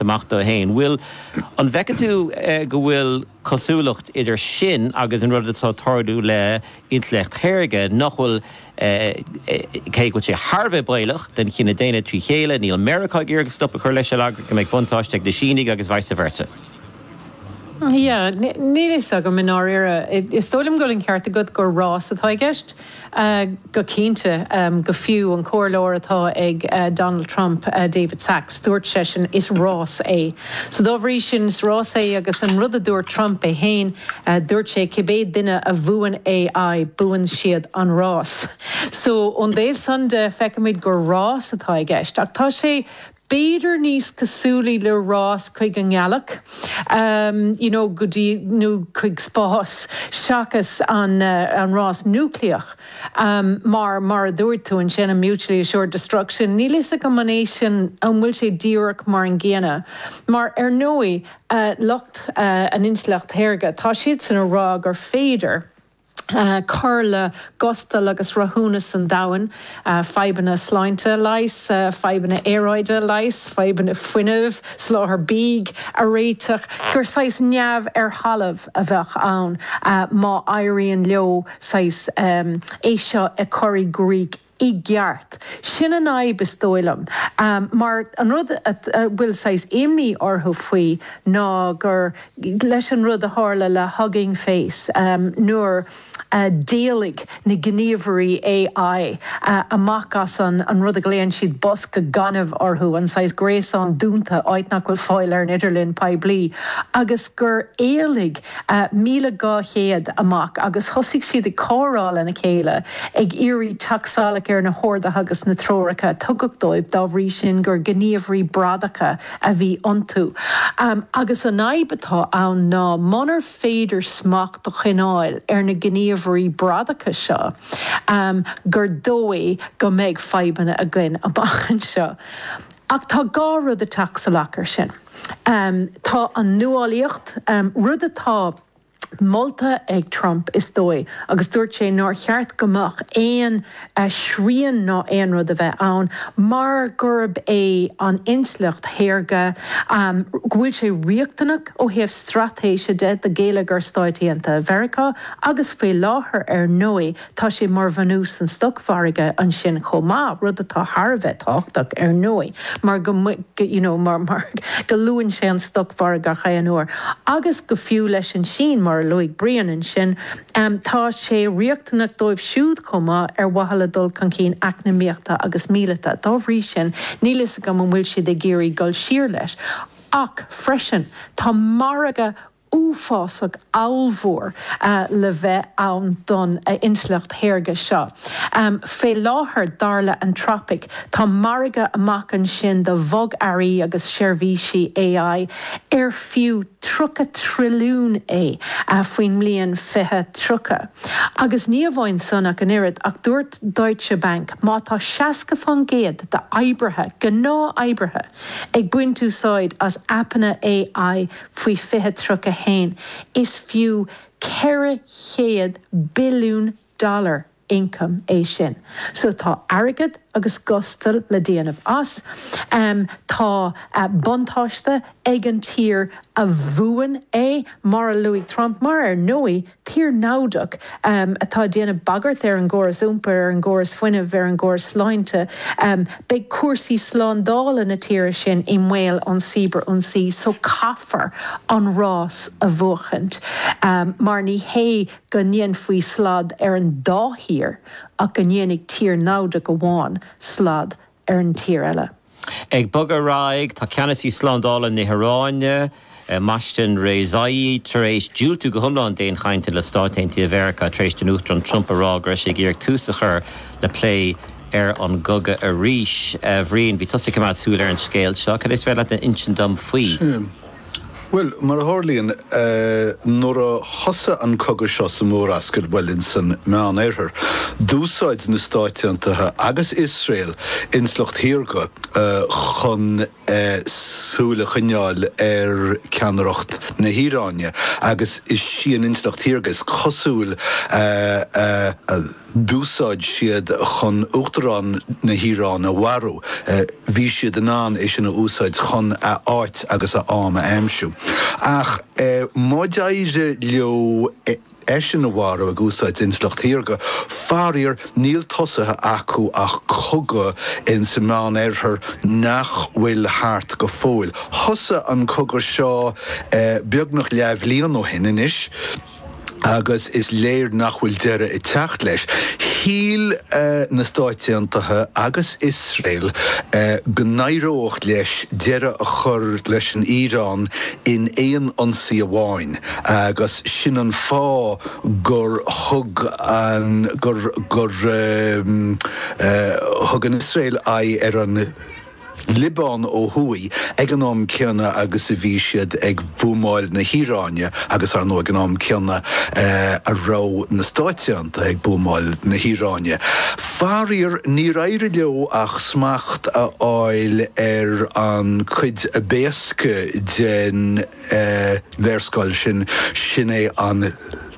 amach dó fhéin. Bhuil, an bhfeiceann tú go bhfuil cosúlacht idir sin agus an rud atá ag tarlú le intleacht shaorga, nach bhfuil, cé go bhfuil sé thar a bheith baolach don chine daonna trí chéile, níl Meiriceá ag iarraidh stop a chur leis ar eagla go mbeidh buntáiste ag na Sínigh agus vice versa. Yeah, níl a fhios agam i ndáiríre. Is dóigh liom go bhfuil an ceart agat gur rás atá i gceist. Go cinnte, go fiú an comhairleoir atá ag Donald Trump, David Sacks, dúirt seisean, is rás é. So dá bhrí sin, is rás é agus an rud a dúirt Trump é féin, dúirt sé cibé duine a bhuann AI, buann siad an rás. So ón dtaobh san de, feicimid gur rás atá i gceist. Ach tá sé. b'fhéidir níos cosúlaí le rás chuig an ngealach you know go dtí nó chuig spás seachas an an rás núicléach mar mar a dúirt tú ansin an mutually assured destruction níl fhios agam an é sin an bhfuil sé díreach mar an gcéanna mar ar ndóigh lucht an intleacht shaorga tá siadsan ag rá gur féidir cur le gustal agus rathúnas an domhain, fadhbanna sláinte a leigheas, fadhbanna aeráide a leigheas, fadhbanna fuinnimh, soláthair bídh a réiteach, gur saghas neamh ar thalamh a bheadh ann má éiríonn leo saghas é seo a chur i gcrích. i gceart. Sin an fhadhb is dóigh liom mar an rud a bhfuil saghas imní orthu faoi ná gur leis an rud a tharla le Hugging Face nuair a d'éalaigh na gníomhairí AI amach as an rud a ghlaonn siad bosca gainimh orthu, an saghas gréasán dúnta, áit nach bhfuil fáil ar an idirlíon poiblí, agus gur éalaigh. 1,200 amach agus thosaigh siad ag comhrá lena chéile ag iarraidh teacht salach ar na horduithe agus na treoracha a tugadh dóibh dá bhrí sin gur gníomhairí bradacha a bhí iontu agus an fhadhb atá ann ná munar féidir smacht a choinneáil ar na gníomhairí bradacha seo gur dóigh go mbeidh fadhbanna againn amach anseo ach tá dhá rud ag teacht salach ar sin. Tá an nuálaíocht, rud atá molta ag Trump, is dóigh, agus dúirt sé nár cheart go mbeadh aon srian ná aon rud a bheith ann mar gurb é an intleacht shaorga, go bhfuil sé riachtanach ó thaobh straitéise de do gheilleagar Stáit Aontaithe Mheiriceá agus faoi láthair, ar ndóigh, Tá sé mar bhunús san stocmhargadh ansin chomh maith, rud atá thar a bheith tábhachtach ar ndóigh mar go you know mar mar go luann sé an stocmhargadh ar chaoi ar aon uair agus go fiú leis an Sín mar a luaigh Brian ansin em tá sé riachtanach dóibh siúd chomh maith ar mhaithe le dul chun cinn eacnamaíochta agus míleata. Dá bhrí sin níl fhios agam an bhfuil siad ag iarraidh dul siar leis ach freisin tá margadh uafásach ollmhór le bheith ann don intleacht shaorga seo. Fé láthair, dar le hAnthropic, tá margadh amach ansin do bhogearraí agus seirbhísí AI ar fiú 30 trilliún é faoin mbliain 2030. Agus ní amháin san ach an oiread, ach dúirt Deutsche Bank má tá 60 fán gcéad d'oibrithe, gnáth-oibrithe, ag baint úsáid as aipeanna AI, Faoi 2031, is fiú 400 billiún dollar ioncaim é sin. So tá airgead agus gustal le déanamh as. Tá buntáiste ag an tír a bhuann é, mar a luaigh Trump, mar ar ndóigh, Tír naimhdeach atá ag déanamh bagairt ar an gcóras iompair, ar an gcóras fuinnimh, ar an gcóras sláinte. Beidh cúrsaí slándála na tíre sin i mbaol ón cibearionsaí so caithfear an rás a bhuachaint mar ní hé go ndéanfaí slad ar an dá thír ach go ndéanfaidh tír naimhdeach amháin slad ar an tír eile. Ag bogadh ar aghaidh tá ceannasaí slándála na hIaráine, Mohsen Rezaei, tar éis diúltú go hiomlán d'aon chainteanna le Stáit Aontaithe Mheiriceá tar éis don Uachtarán Trump a rá go raibh sé ag iarraidh tús a chur le plé ar an gcogadh arís. A Bhriain, bhí tusa ag coimeád súil ar an scéal seo. Cad é is féidir leat a insint dom faoi? Bhuel, mar a tharlaíonn, nuair a thosaigh an cogadh seo sa Mhurascaill, bhuel, insan Meán-Oirthear, d'úsáid na Stáit Aontaithe agus Iosrael intleacht shaorga chun súil a choinneáil ar ceannaireacht na hIaráine agus is sí an intleacht shaorga is cosúil a d'úsáid siad chun Uachtarán na hIaráine a mharú. Bhí siad in ann é sin a úsáid chun a áit agus a am a aimsiú. Ach má d'éirigh leo eisean a mharú ag úsáid intleacht shaorga, faraor níl tosaithe acu ach cogadh insa Meán Oirthear nach bhfuil thart go fóill. Thosaigh an cogadh seo beagnach leathbhliain ó shin anois. agus is léir nach bhfuil deireadh ag teacht leis. Shíl na Stáit Aontaithe agus Iosrael go n-éireodh leo deireadh a chur leis an Iaráin in aon ionsaí amháin agus sin an fáth gur thug an, gur thug an Iosrael aghaidh ar an Liobáin ó thuaidh ag an am céanna agus a bhí siad ag buamáil na hIaráine agus, ar ndóigh, ag an am céanna a raibh na Stáit Aontaithe ag buamáil na hIaráine. Faraor, níor éirigh leo ach smacht a fháil ar an chuid ab éasca den léarscáil sin, sin é an.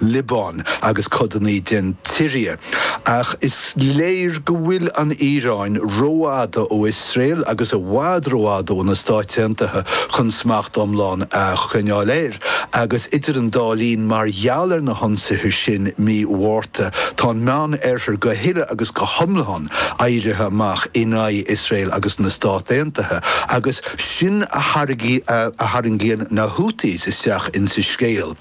Liobáin agus codanna den tSiria. Ach is léir go bhfuil an Iaráin rófhada ó Iosrael agus i bhfad rófhada ó na Stáit Aontaithe chun smacht iomlán a choinneáil air, agus idir an dá linn, mar gheall ar na hionsaithe sin mí Mhárta, tá an Meán-Oirthear go huile agus go hiomlán éirithe amach in aghaidh Iosrael agus na Stát Aontaithe, agus sin a tharraingíonn na Houthis isteach ins an scéal.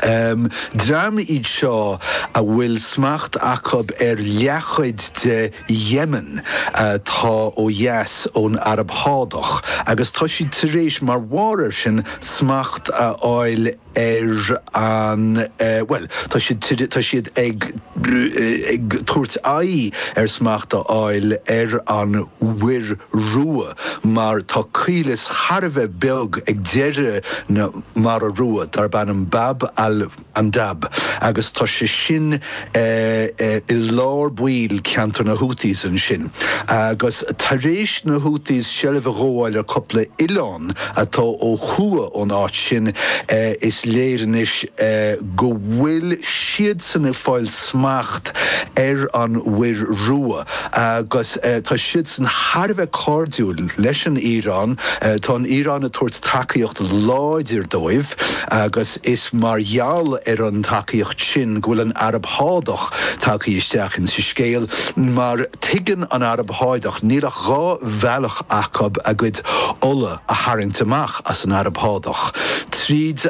Dream iad seo a bhfuil smacht acu ar leathchuid de Yemen atá ó dheas ón Araib Shádach agus tá siad tar éis, mar bharr air sin, smacht a fháil ar an, bhuel, tá, tá siad ag, ag tabhairt aghaidh ar smacht a fháil ar an Mhuir Rua mar tá caolas thar a bheith beag ag deireadh na, mara rua darb ainm Bab al Mandab agus tá sé sin i lár báire ceantar na Houthis ansin agus tar éis na Houthis seilbh a ghabháil ar cúpla oileán atá ó thuaidh ón áit sin is léir anois go bhfuil siadsan ag fáil smacht ar an Mhuir Rua agus tá siadsan thar a bheith cairdiúil leis an Iaráin. Tá an Iaráin ag tabhairt tacaíocht láidir dóibh agus is mar gheall ar an tacaíocht sin go bhfuil an Araib Shádach tagtha isteach ins an scéal. Mar tuigeann an Araib Shádach níl ach dhá bhealach acu a gcuid ola a tharraingt amach as an Araib Shádach, tríd.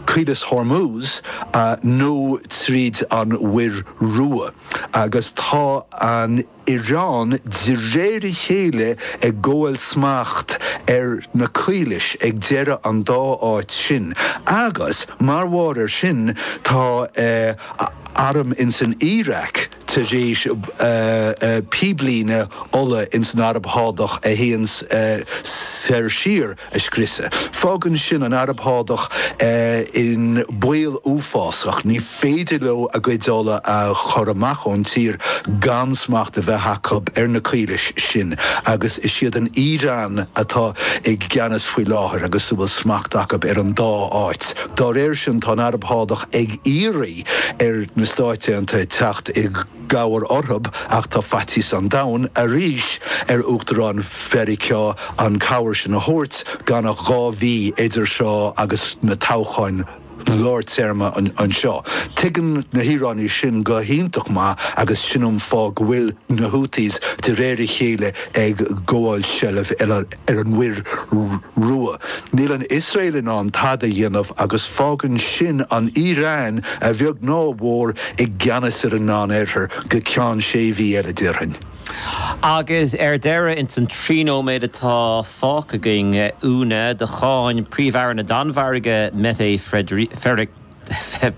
Caolas Hormuz nó tríd an Mhuir Rua, agus tá an Iaráin de réir a chéile ag gabháil smacht ar na caolais ag deireadh an dá áit sin, agus mar bharr ar sin tá arm ins an Iaráic. tar éis píblíne ola ins an Araib Shádach a théann soir siar a scriosadh. Fágann sin an Araib Shádach in baol uafásach. Ní féidir leo a gcuid ola a chur amach ón tír gan smacht a bheith acu ar na caolais sin agus is iad an Iaráin atá i gceannas faoi láthair agus a bhfuil smacht acu ar an dá áit. Dá réir sin tá an Araib Shádach ag iarraidh. ar na Stáit Aontaithe teacht i gcabhair orthu ach tá faitíos an domhain arís ar Uachtarán Mheiriceá an chabhair sin a thabhairt gan ach dhá mhí idir seo agus na toghcháin lár téarma anseo. Tuigeann na hIaránaigh sin go hiontach maith agus sin an fáth go bhfuil na Houthis de réir a chéile ag gabháil seilbh ar ar an Mhuir Rua. Níl an Iosrael in ann tada a dhéanamh agus fágann sin an Iaráin, a bheag nó a mhór, i gceannas ar an Meán Oirthear go ceann sé mhí eile, déarfainn. Agus ar deireadh, ins an trí nóiméad atá fágtha againn, Úna, do cháin Príomh-Aire na Danmhairge, Mette Frederiksen,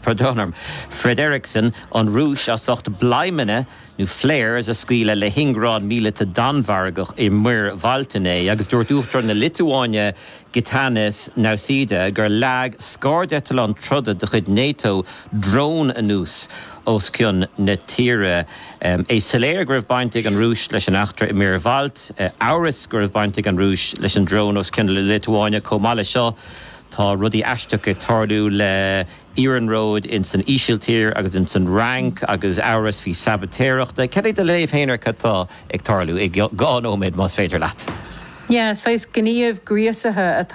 pardon orm, Frederiksen, an Rúis as ucht bladhmanna nó flares a scaoileadh le hingearán míleata Danmhargach i Muir Bhailt inné agus dúirt Uachtarán na Liotuáine Gitanas Nauseda gur leag scairdeitleán troda de chuid Nato drón anuas os cionn na tíre. É soiléir go raibh baint ag an Rúis leis an eachtra i Muir Bhailt. Amhras go raibh baint ag an Rúis leis an drón os cionn na Liotuáine. Chomh maith le seo, Tá rudaí aisteacha ag tarlú le iarnróid ins an Ísiltír agus ins an Fhrainc agus amhras faoi sabaitéireacht. Cad é do léamh féin ar cad tá ag tarlú? I dhá nóiméad más féidir leat. Yeah, saghas gníomh gríosaithe atá